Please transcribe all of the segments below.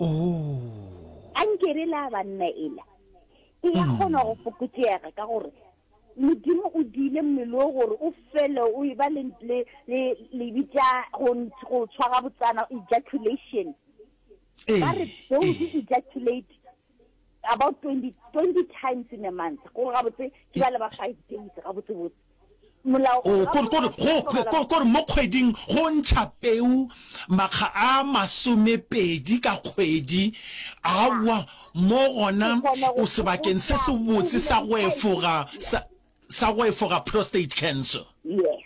oh. a nke re la banna ela e ya kgona go fokotšega ka gore modimo o dile mmele o gore o fele o e ba le bitša go tshwara botsana ejaculation ba re those ejaculate about 20, 20 times in a month gore gabotse ke ba le ba five days gabotsebotse kore mo kgweding go ntšha peu makga a masomepedi ka kgwedi awa mo gona o sebakeng se se botse sa go efoga Sa go efoga prostate cancer. Yes.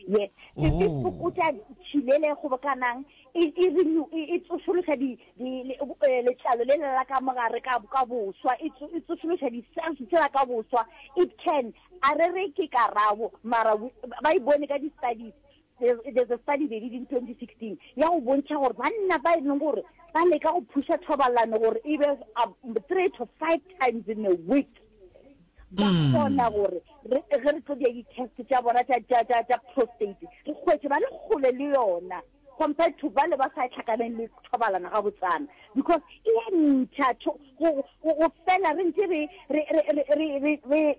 Yes. Se se Oh. fokotša tšhilele e kgobokanang, e e renew- e e tsošološa di di le- eh, letlalo le lela ka mogare ka ka boswa, e tso- e tsošološa di-cells tsela ka boswa. It can. A re re ke karabo mara we- ba e bone ka di-studies. There's a study they did in 2016 ya go bontšha gore banna ba e leng gore ba leka go phuša thobalano gore e be um, three to five times in a week ba hmm. kgona gore ge re tlo dia di-test tša bona tša prostate re kgwetse ba le kgole le yona compared to bale ba sa tlhakaneng le thobalana ga botsana because e ya ntšha go fela re ntse re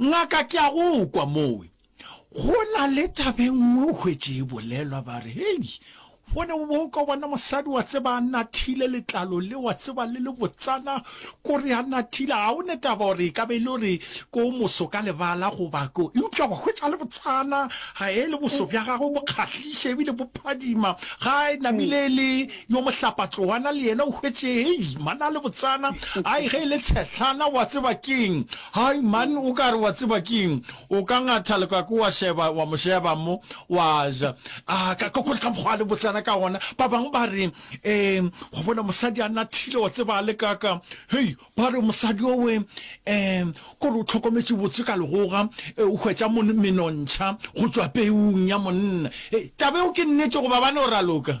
Ngaka, ke a go kwa mowe. Go na le taba e nngwe o hwetše e bolelwa, ba re, Hei, bone o bo o ka bona mosadi, wa tseba, a nathile letlalo le, wa tseba, le le botsana, ko re a nathile. Ga o ne taba gore e ka be e le gore ke o moso ka lebala goba ko, eupša wa hwetša le botsana, ga e le boso bja gagwe bo kgahliša ebile bo phadima, ga e namile e le Yo mohlapatloana le yena o hwetše, hei, man a le botsana, ai, ge e le tshehlana, wa tseba ke'ng? Hai, man, o ka re, wa tseba ke'ng? O ka ngatha lekako wa šeba, wa mo šeba mo, wa ja. A, ka, ka, ka mokgwa a le botsana ka gona. Ba bangwe ba re, Ee, wa bona, mosadi a nathile, wa tseba, a le ka, ka. Hei, ba re, mosadi o we, ee, ko re o hlokometše botse ka legoga, ee, o hwetša mon, menontšha go tšwa peung ya monna. Hei, taba eo ke nnete goba bane o raloka?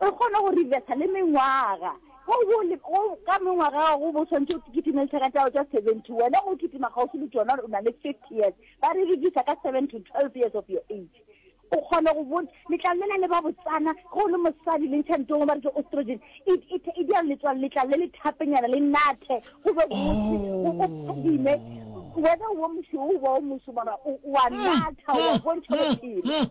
O kgona go reversa le mengwaga. Ge o bo o le, go, ka mengwaga ya gago o bo o swanetše o kitimele tšhelete ya gago tša seventy, wena o kitima kgauswi le tšona, o na le fifty years, ba re reducer ka seven to twelve years of your age. O kgona go bona, letlalo lela le ba botsana, ge o le mosadi le ntšha ditongwe ba re ke oestrogen, e, e, e dira letswalo, letlalo le le thapenyana, le nathe, go be gotse, o, o phadime. Wena o bo mošweu, o ba o moso, mara o, o a natha, o a bontšha bophelo.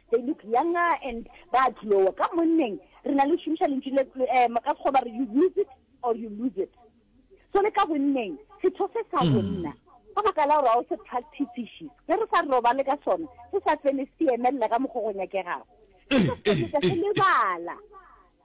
They look younger and ba a glowa. Ka monneng re na le go šomiša lentšu le, um ka Sekgowa ba re, you use it or you lose it. So le ka bonneng, setho se sa bonna, ka baka la gore ga o se practisiše, ge re sa robale ka sona, se sa fele se emelela ka mokgwa o go nyakegago, se tlo feleletša se lebala.